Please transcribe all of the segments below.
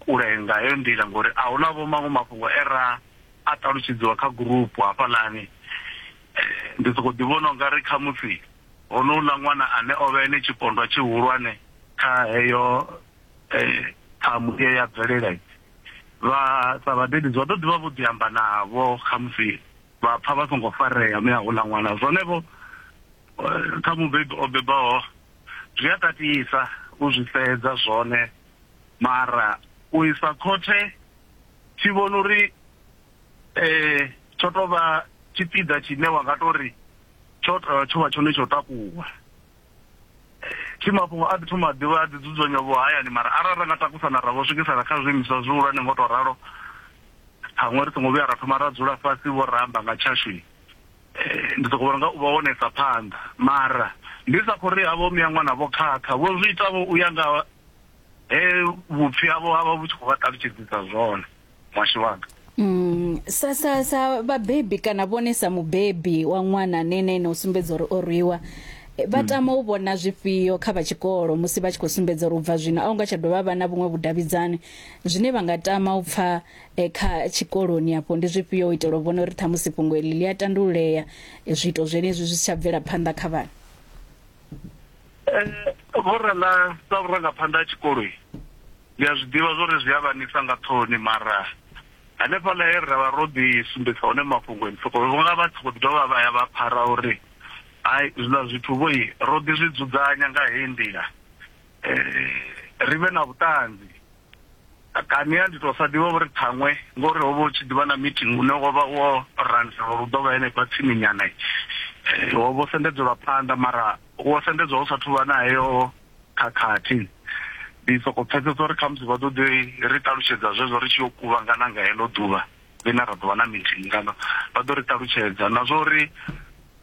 kule nga heyo nḓila ngori a huna vho maṅwe mafhungo e ra a ṱalutshedziwa kha gurupu hafhaḽani eh, ndi soko ḓi vhona unga ri khamusi honouḽa ṅwana ane o vha ene tshipondwa tshihulwane kha heyo eh, ṱhamu ye ya bvelela vha sa vhadededzi vha ḓo ḓivha vho ḓi amba navho khamusi vha pfa vha songo farea mme hauḽa ṅwana zwonevho eh, kha mubebi o bebaho Zwi a tatisa u zwi sedza zwone, mara u isa khothe thi vhoni uri tsho tou vha tshipiḓa tshine wa nga tou ri tsho tsho vha tshone tsho takuwa. Thi mafhungo a ḓi thoma a ḓivha a ḓi dzudzanywa vho hayani mara arali ra nga takusana ra vho swikisa na kha zwiimiswa zwihulwane ngo to ralo, ṱhaṅwe ri songo vhuya ra thoma ra dzula fhasi vho ra amba nga tshashu. Eh, ndi sokou vhona nga u vha wonesa phanḓa mara ndi sa khou ri havho miyaṅwana vho khakha vho zwi itavho u ya nga he vhupfi havho ha vha vhu tshi khou vha ṱalutshedzisa zwone mwashu wanga Mm, sa sa sa vhabebi kana vhone sa mubebi wa ṅwana ane ene ene u sumbedza uri o rwiwa eh, vha tama u vhona zwifhio kha vha tshikolo musi vha tshi khou sumbedza uri u bva zwino a hu nga tsha dovha vha na vhuṅwe vhudavhidzani zwine vha nga tama u pfha e, kha tshikoloni afho ndi zwifhio u itela u vhona uri ṱhamusi fhungo eḽi ḽi a tandululea e, zwiito zwenezwi zwi si tsha bvela phanḓa kha vhana eh, vhorala sa vhurangaphanḓa ha tshikoloi ndi a zwi ḓivha zwori zwi a vhanisa nga ṱhoni mara hanefhaḽa he ra vha ro ḓi sumbedza hone mafhungo ni soko vhonga vha tshi khou dovha vha ya vha phara uri hai zwiḽa zwithu vhoi ro ḓi zwi dzudzanya nga heyi nḓila um ri vhe na vhuṱanzi kani a ndi tou sa ḓivha uri ṱhaṅwe ngori ho vha hu tshi ḓivha na meeting une wo vha wo randelwa uri u ḓo vha henefha tsininyana wo vho sendedzelwa phanḓa mara wo sendedzwa hu sathu vha na heyo khakhathi ndi soko pfesesa uri khamusi vha ḓo ḓi ri ṱalutshedza zwezwo ri tshi yo kuvhangana nga heḽo ḓuvha ḽine ra ḓo vha na meeting kana vha ḓo ri ṱalutshedza na zwa uri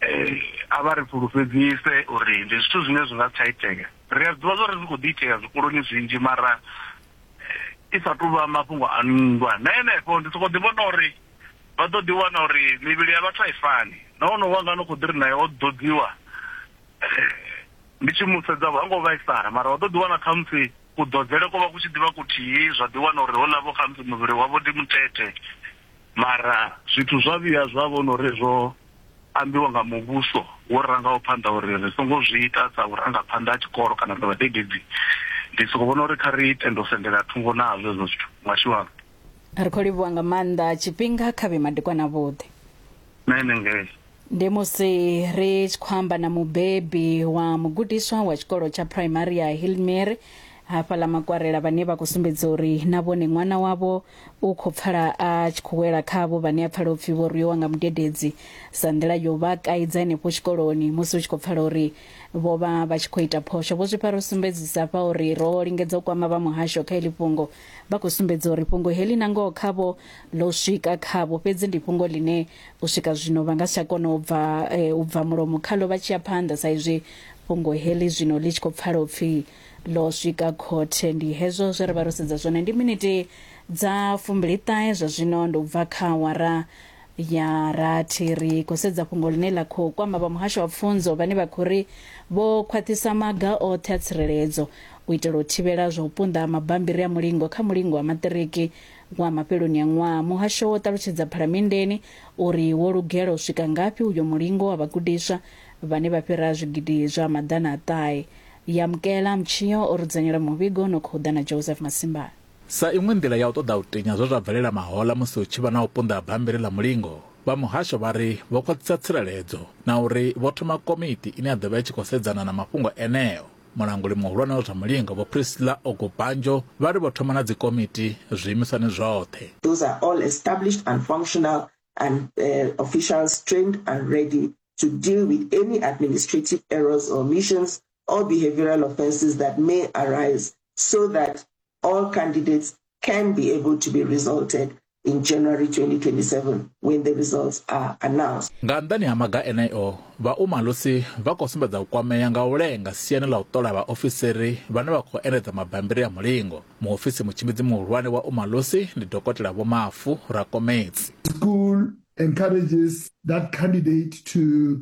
eh, a vha ri fhulufhedzise uri ndi zwithu zwine zwi nga si tsha itea ri a ḓivha zwa uri zwi khou ḓi itea zwikoloni zwinzhi mara eh, i sa tu vha mafhungo a nndwa na henefho ndi sokou ḓi vhona uri vha ḓo ḓi wana uri mivhili ya vhathu a i fani na wono wanga no khou ḓi ri naye o ḓodziwa eh, ndi tshi mu sedza ha ngo vhaisala mara wa ḓo ḓi wana khamusi kuḓodzele ko vha ku tshi ḓivha kuthihi zwa ḓi wana uri ho lavo khamusi muvhili wavho ndi muthethe Mara zwithu zwa vhuya zwa vhona uri zwo ambiwa nga muvhuso wo rangaho phanḓa uri ri songo zwi ita sa vhurangaphanḓa ha tshikolo kana sa vhadededzi ndi soko vhona uri kha ri tende u sendela thungo nazwo hezwo zwithu mashiwalo ri khou livhuwa nga maanḓa tshifhinga kha vhe madekwana vhuḓi na ene ngei ndi musi ri tshi khou amba na mubebi wa mugudiswa wa tshikolo tsha phuraimari ya hilmary hafha ḽa makwarela vhane vha khou sumbedza uri na vhone ṅwana wavho u khou pfala a tshi khou wela khavho vhane a pfala upfhi vho rwiwa nga mudededzi sa nḓila yo vha kaidza henefho tshikoloni musi u tshi khou pfala uri vho vha vha tshi khou ita phosho vho zwifha ro sumbedzisa fha uri ro lingedza u kwama vha muhasho kha ili fhungo vha khou sumbedza uri fhungo heḽi na ngoho khavho ḽo swika khavho fhedzi ndi fhungo ḽine u swika zwino vha nga si tsha kona u bva eh, u bva mulomo khaḽo vha tshi ya phanḓa sa izwi fhungo heḽi zwino ḽi tshi khou pfala u pfi ḽo swika khothe ndi hezwo zwe ra vha ro sedza zwone ndi miniti dza fumbili ṱahe zwa zwino ndi u bva kha awara ya rathi ri khou sedza fhungo ḽine ḽa khou kwama vha muhasho wa pfunzo vhane vha khou ri vho khwaṱhisa maga oṱhe a tsireledzo u itela u thivhela zwa u punḓa ha mabambiri a mulingo kha mulingo wa maṱiriki wa mafheloni a ṅwaha. Muhasho wo ṱalutshedza phalamenndeni uri wo lugela u swika ngafhi uyo mulingo wa vhagudiswa vhane vha fhira zwigidi zwa maḓana a ṱahe. Yamkela Mtshio o ri dzudzanyela muvhigo no khou ḓa na Joseph Masimbane. Sa iṅwe nḓila ya u ṱoḓa u tinya zwe zwa bvelela mahoḽa musi hu tshi vha na u punḓa ha bammbiri ḽa mulingo, vha muhasho vha ri vho khwaṱhisa tsireledzo na uri vho thoma komiti ine ya ḓo vha i tshi khou sedzana na mafhungo eneo. Mulanguli muhulwane wa zwa mulingo Vho Priscilla Ogubanjo vha ri vho thoma na dzikomiti zwiimiswani zwoṱhe. Those are all established and functional and uh, officials trained and ready to deal with any administrative errors or omissions all behavioral offenses that may arise so that all candidates can be able to be resulted in January 2027 when the results are announced. Nga nḓani ha maga eneo, vha Umalusi vha khou sumbedza u kwamea nga u lenga siani ḽa u ṱola vhaofisiri vhane vha khou endedza mabambiri a mulingo. Muofisi mutshimbidzi muhulwane wa Umalusi ndi Dokotela Vho Mafu Rakomedzi. School encourages that candidate to